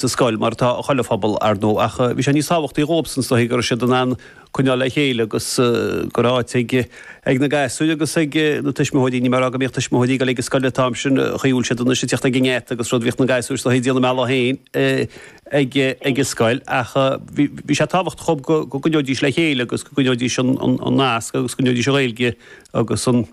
sa scoil, mar atá, chuile phobal, ar ndóigh, ach bhí sé níos tábhachtaí dhóibhsan sa chaoi go raibh siad in ann coinneáil le chéile agus go raibh áit ag na gasúir agus ag na tuismitheoirí, níl mé ag rá go mbíodh tuismitheoirí ag dul ag an scoil an t-am sin, shiúil siad anois, ag tíocht ag an ngeata agus rud, bhíodh na gasúir sa chaoi ag déanamh a mbealach féin ag an scoil ach bhí sé tábhachtach dhóibh go gcoinneoidís le chéile agus go gcoinneoidís an nasc agus go gcoinneoidís an Ghaeilge agus an,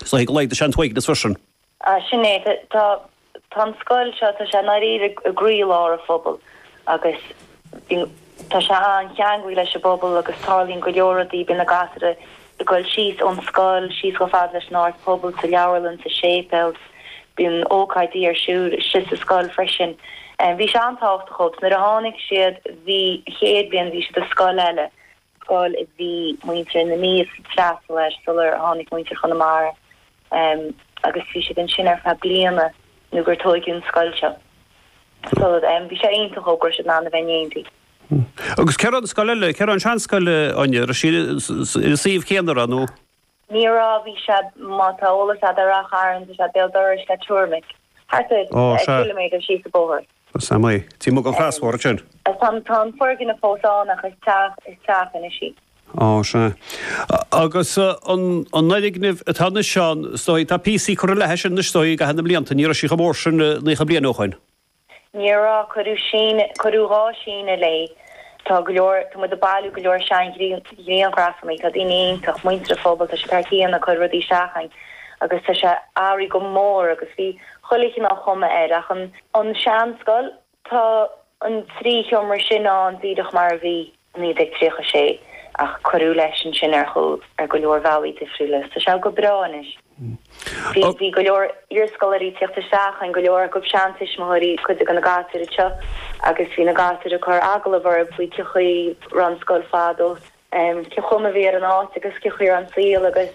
sa chaoi go laghdaigh sé an t-uaigneas freisin. Ah, sin é. Tá, tá, tá an scoil seo, tá sé i ndáiríre i gcroílár an phobail agus, you know, tá sé an-cheangailthe leis an bpobal agus tarlaíonn go leor rudaí, bíonn na gasúir ag goil síos ón scoil, síos chomh fada leis an Áras Pobail, sa leabharlann, sa séipéal, bíonn ócáidí ar siúl istigh sa scoil freisin. Bhí sé an-tábhachtach dhób, so nuair a tháinig siad, bhí, chéad bhliain, bhí siad i scoil eile, scoil a bhí muintir na Mí ag freastal air sular tháinig muintir Chonamara agus bhí siad ansin ar feadh bliana nó gur tóigeadh an scoil seo. So em bhí sé iontach go raibh siad in ann a bheith in éindí. Agus cá raibh an scoil eile, cá raibh an seanscoil, Áine, raibh sí sa suíomh chéanna nó? Ní raibh, bhí sí, má tá eolas agat ar Ráth Chairn, is é béal dorais, tuairim is, thart ar chiliméadar síos an bóthar. Amuigh ag an gcrosbhóthar ansin. Tá an foirgneamh fós ann ach is teach is teach anois í. Á, sea. Agus an fhoirgneamh atá anois ann, is dóigh, tá píosaí curtha léi sin anois, is dóigh, i gcaitheamh na mblianta. Ní raibh sí chomh mór sin naocha bliain ó shoin. Ní raibh, cuireadh síneadh, cuireadh dhá síneadh léi. Tá go leor, tá muid ag bailiú go leor seanghrianghrafanna, tá daoine iontach, muintir an phobail, tá siad thar cionn ag cur rudaí isteach againn agus tá sé athraithe go mór agus bhí chuile chineál chuma air ach an seanscoil, tá an trí sheomra sin ann díreach mar a bhí. 1936, ach cuireadh leis ansin ar go leor bealaí difriúla. Tá sé go breá anois. Bhí go leor iarscoláirí ag tíocht isteach againn, go leor acu seantuismitheoirí cuid de na gasúir anseo, agus bhí na gasúir ag cur agallamh orthu faoi cé chaoi a raibh an scoil fadó, cén chuma a bhí ar an áit agus cé chaoi a raibh an saol agus.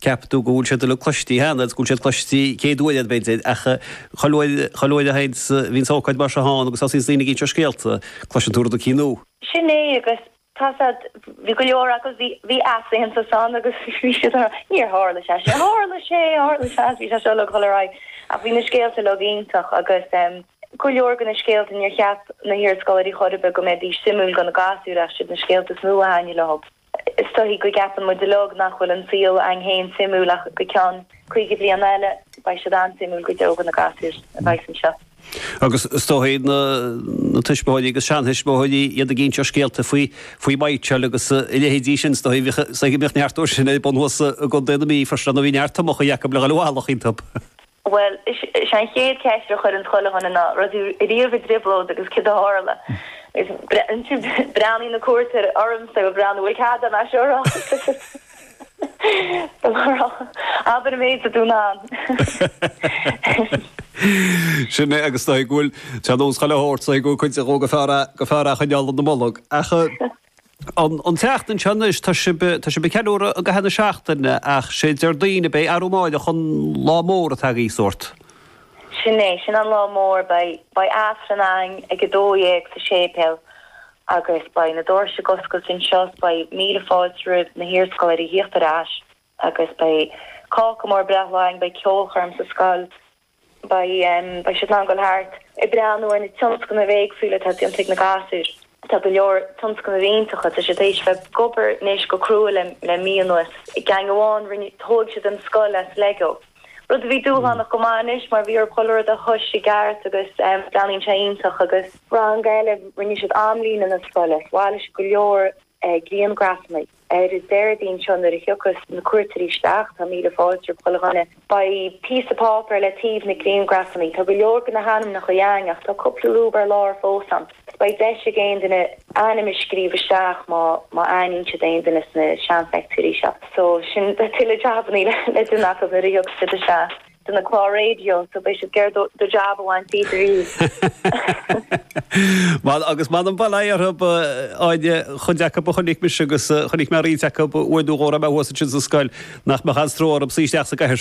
Ceapann tú go bhfuil siad uilig cloistí cheana, agus go bhfuil siad cloistí céad uair eile, b'fhéidir, ach chuile uair, chuile uair a thaganns, bhíonns ócáid mar seo ann agus thosaíonns daoine ag inse scéalta, cloiseann tú rud éicínt nua. Sin é, agus tá siad, bhí go leor acu, bhí, bhí easaontas ann agus bhí siad a rá, níor tharla sé sin, tharla sé, tharla sé, bhí sé seo le dhul ar aghaidh, ach bhí na scéalta uilig iontach agus ehm, go leor de na scéalta, níor cheap na hiarscoláirí chor ar bith go mbeidís suimiúil do na gasúir ach is iad na scéalta is mó a thaitnigh leo. Is dóigh go gceapann muid uilig nach bhfuil an saol againn féin suimiúil ach go ceann caoga bliain eile beidh siad an-suimiúil go deo do na gasúir a bheas anseo. Agus is dóigh na tuismitheoirí agus seanthuismitheoirí, iad ag inse scéalta faoi mhaidhtseáil agus a leithéidí sin, is dóigh go mbíodh neart dhó sin ar bun thuas i gContae na Mí freisin, nó bhí neart tomacha acu le dhul i bhfolach iontub! Bhuel, is é an chéad cheist a chuireanns chuile dhuine ná, raibh tú riamh i dtrioblóid agus céard a tharla? Breathnaíonn na cuairteoirí ormsa ag breathnú, bhfuil cead a'm é seo a rá? Abair an méid atá tú in ann. Sin é agus, nó go bhfuil, tá nós chuile shórt, nó go bhfuil cuid de go go fearr a choinneáil ina mbolg. Ach. An tseachtain seo anois, tá sibh ag ceiliúradh i gcaitheamh na seachtaine ach sé Déardaoin a beidh arú amáireach, an lá mór atá agaibh sórt. Sin é, sin an lá mór, beidh Aifreann againn ag 12 sa séipéal agus beidh na doirse ag oscailt anseo 's beidh míle fáilte roimh na hiarscoláirí a thíocht ar ais agus beidh cáca mór breithlá againn, beidh ceolchoirm sa scoil. Beidh siad in ann dul thart ag breathnú ar na tionscnaimh éagsúla atá déanta ag na gasúir. Tá go leor tionscnaimh iontach, tá siad tar éis bheith ag obair anois go crua le mí anuas. I gceann amháin rinne, thóg siad an scoil as Lego, rud a bhí dúshlánach go maith anois mar bhí orthu chuile rud a thomhais i gceart agus breathnaíonn sé iontach agus. Rang eile, rinne siad amlíne na scoile as, bhailigh siad go leor grianghrafanna. Ar an Déardaoin seo nuair a thiocfas na cuairteoirí isteach, tá míle fáilte roimh chuile dhuine. Beidh píosa páipéar le taobh na grianghrafannaí. Tá go leor de na hainmneacha a'inn ach tá cúpla lúb ar lár fós ann so beidh deis ag aon duine ainm a scríobh isteach má má aithníonn siad aon duine sna seanpheictiúirí seo. So sin tuilleadh jabannaí le déanamh acu nuair a thiocfas siad isteach. de na cláir raidió so beidh siad ag iarraidh do jab a bhaint díot ariamh. Bhuel agus m'anam an bhail atá orthu, aon chuid acu a chonaic mise agus chonaic mé roinnt acu uair nó dhó a raibh mé thuas ansin sa scoil nach mbeadh aon stró orthu suí isteach sa gcathaoir.